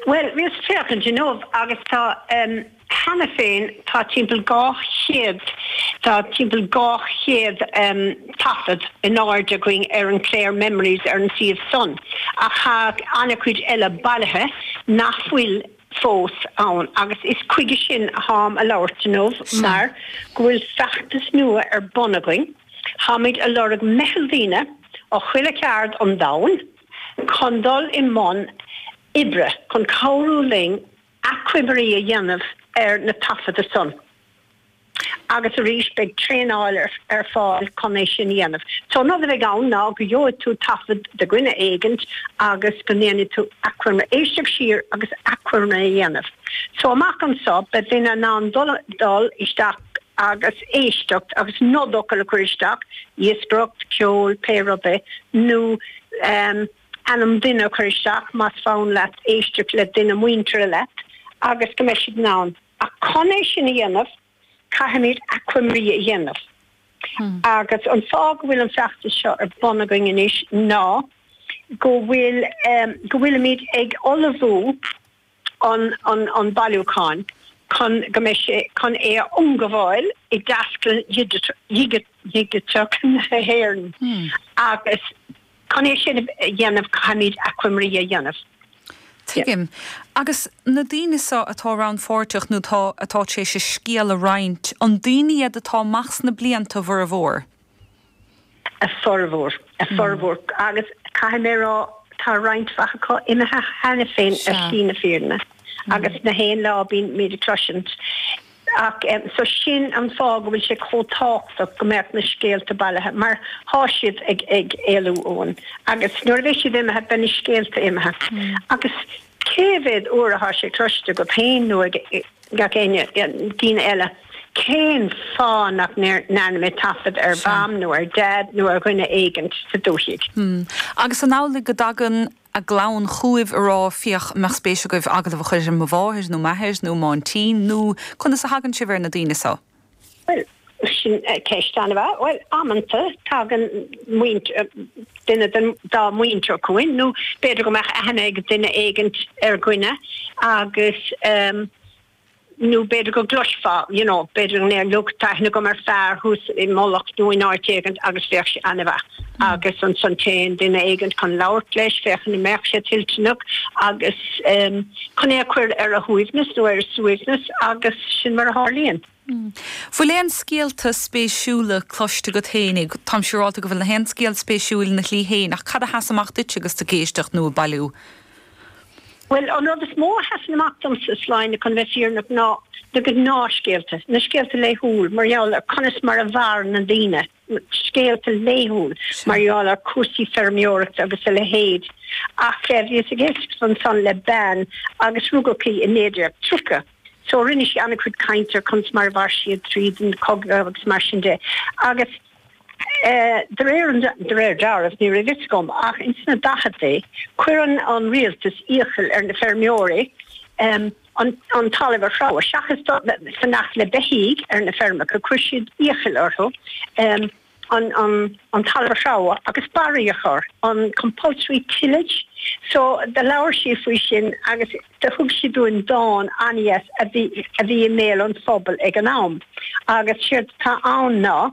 Bhuel, bhíos ag féachaint inniu agus tá, em, cheana féin tá timpeall dhá chéad, tá timpeall dhá chéad, em, taifead in airde againn ar an Clare Memories ar an suíomh san ach tá an-chuid eile bailithe nach bhfuil fós ann agus is chuige sin a táim a' labhairt inniu Sea. mar go bhfuil feachtas nua ar bun againn, táimid a' lorg meitheal daoine ó chuile cheárd an domhain, chun dul i mbun oibre chun cabhrú linn achoimrí a dhéanamh ar na taifeadta san agus arís beidh traenáil ar fáil chun é sin a dhéanamh. So an rud a bheidh ann ná go gheobhaidh tú taifead de dhuine éigint agus go ndéanfaidh tú achoimre, éisteacht siar agus achoimre a dhéanamh. So amach anso beidh duine in ann dul isteach, agus éisteacht agus nodfhocal a chur isteach, iascaireacht, ceol, pé rud é, nó ainm duine a chur isteach más fonn leat éisteacht le duine muinteartha leat, agus go mbeidh siad in ann. Ach chun é sin a dhéanamh, caithfimid achoimrí a dhéanamh. Agus an fáth go bhfuil an feachtas seo ar bun againn anois ná go bhfuil, go bhfuilimid ag ullmhú, an bailiúcháin chun go mbeidh sé chun é a ionghabháil i dTaisclann Dhigiteach na hÉireann agus chun é sin a dhéanamh caithfimid achoimrí a dhéanamh. Tuigim. Agus na daoine seo atá rannpháirteach nó atá tar éis a scéal a roinnt, an daoine iad atá amach sna blianta a bhformhór? a bhformhór. a bhformhór agus caithfidh mé a rá tá roinnt mhaith acu imithe cheana féin ar shlí na fírinne agus gach aon lá bíonn muid ag cloisint ach em so sin an fáth go bhfuil sé chomh tábhachtach go mbeadh na scéalta bailithe mar thá siad ag ag éalú uainn agus nuair a bheidh siad imithe beidh na scéalta imithe agus Cé mhéad uair atá sé cloiste agat féin nó ag gach éinne daoine eile, Cén fáth nach ndearna mé taifead ar Mham nó ar Dad nó ar dhuine éigint sa dúthaigh? Hm. Agus an amhlaidh go dtagann a gclann chúibh a rá, Féach, an mbeadh spéis agaibh agallamh a chur ar mo mháthair nó m'athair nó m'áintín nó conas a thagann sibh ar na daoine so? Bhuel, sin ceist an-mhaith. Bhuel, amanta, tagann muintir, duine dá muintir chugainn, nó b'fhéidir go mbeadh aithne ag duine éigint ar dhuine agus, em, nó b'fhéidir go gcloisfeá, you know, b'fhéidir go ndéarfadh, look, tá aithne agam ar fear thuas i Mullach nó in áit éigint agus bheadh sé an-mhaith. Agus ansan téann duine éigint chun labhairt leis, féachann an mbeadh sé toilteanach agus, em, chun é a chur ar a shuaimhneas nó ar a suaimhneas agus sin mar a tharlaíonn. Bhfuil aon scéalta spéisiúla cloiste agat féin? Táim siúrálta go bhfuil nach aon scéal spéisiúil ina shlí féin ach cad a sheas amach duitse agus tú ag éisteacht nó ag bailiú? Bhuel, an rud is mó a sheasann amach domsa, a Sláine, chun a bheith fírinneach, ná na gnáthscéalta, na scéalta laethúil mar gheall ar conas mar a mhair na daoine, scéalta laethúil mar gheall ar chúrsaí feirmeoireachta agus a leithéid, ach bhíos ag éisteacht ansan le bean agus rugadh í i 1930 so rinne sí an-chuid cainte ar conas mar a mhair siad tríd an chogadh agus mar sin de agus de réir an, de réir dealraimh, ní raibh fhios agam ach ins na daicheadaí, chuir an rialtas iachall ar na feirmeoirí, an talamh a threabhadh, seachas fanacht le beithígh ar na feirmeacha, chuir siad iachall orthu an talamh a threabhadh agus barraí a chur, an compulsory tillage. So, do labhair sí faoi sin agus do thug sí dúinn dán an-dheas a bhí i mbéal an phobail ag an am agus séard atá ann ná,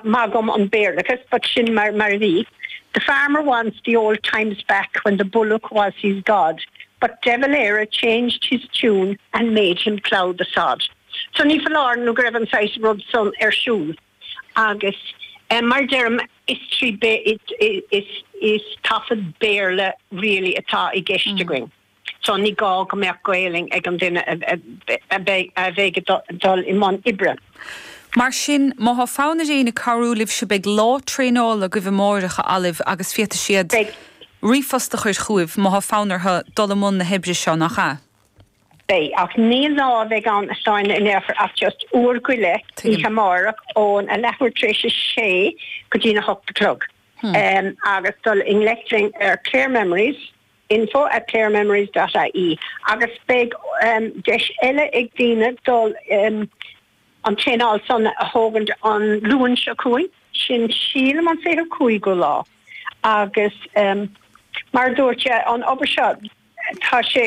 maith dhom an Béarlachas but sin mar a bhí, The farmer wants the old times back when the bullock was his god. But De Valera changed his tune and made him plough the sod. So ní foláir nó go raibh an saghas rud san ar siúl agus mar a deirim, is trí, is taifead Béarla really atá i gceist againn so ní gá go mbeadh Gaolainn ag an duine a bheidh ag dul i mbun oibre. Mar sin, má thá fonn ar éinne cabhrú libhse beidh lá traenála agaibh amáireach agaibh, agus féadfaidh siad ríomhphost a chur chugaibh má thá fonn orthu dul i mbun na hoibre seo, nach ea? Beidh. Ach ní lá a bheidh ann a Shláine, ní bheidh ach just uair go leith oíche amáireach ón a leathuair tar éis a sé go dtín a hocht a chlog agus dul i ngleic linn ar Clare Memories, info at clarememories dot ie agus beidh deis eile ag daoine dul an traenáil san a thógaint an Luan seo chugainn, sin sílim an 25ú lá agus mar a dúirt an obair seo tá sé